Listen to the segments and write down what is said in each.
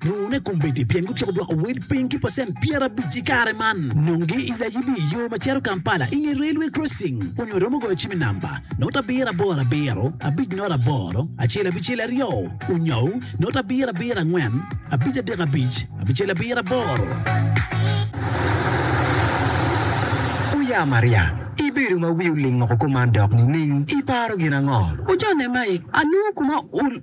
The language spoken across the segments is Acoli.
Lurune kombeddi pien gutyeko dwoko wel piny ki pacent pyerabic i kare man. Nongi i layibi i yo ma cito Kampala i nge railway crossing onyo iromo goyo cim i namba not abiro aboro abiro abic not aboro acel abicel aryo onyou not abiro abiro angwen abic adek abic abicel abiro aboro. Oya Maria, ibedo ma wi oling oko kuman dok nining? Iparo gin ango? Ojone Mike, alungu kuma u.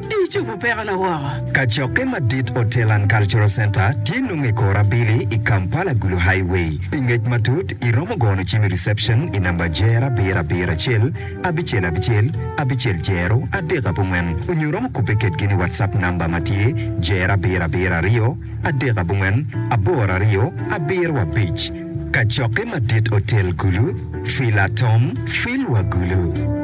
Di icubu pekona woko. Kacokke madit Hotel and Cultural Centre tye nongo i kor abili i Kampala Gulu Highway. Pi ngec matut, iromo gono cim i reception i namba jero abiro abiro acel abicel abicel abicel jero adek abongwen onyo romo kubbe kedgi ni WhatsApp namba ma tye jero abiro abiro aryo adek abongwen aboro aryo abiro abic. Kacokke madit Hotel Gulu, Fila Tom, Fil wa Gulu.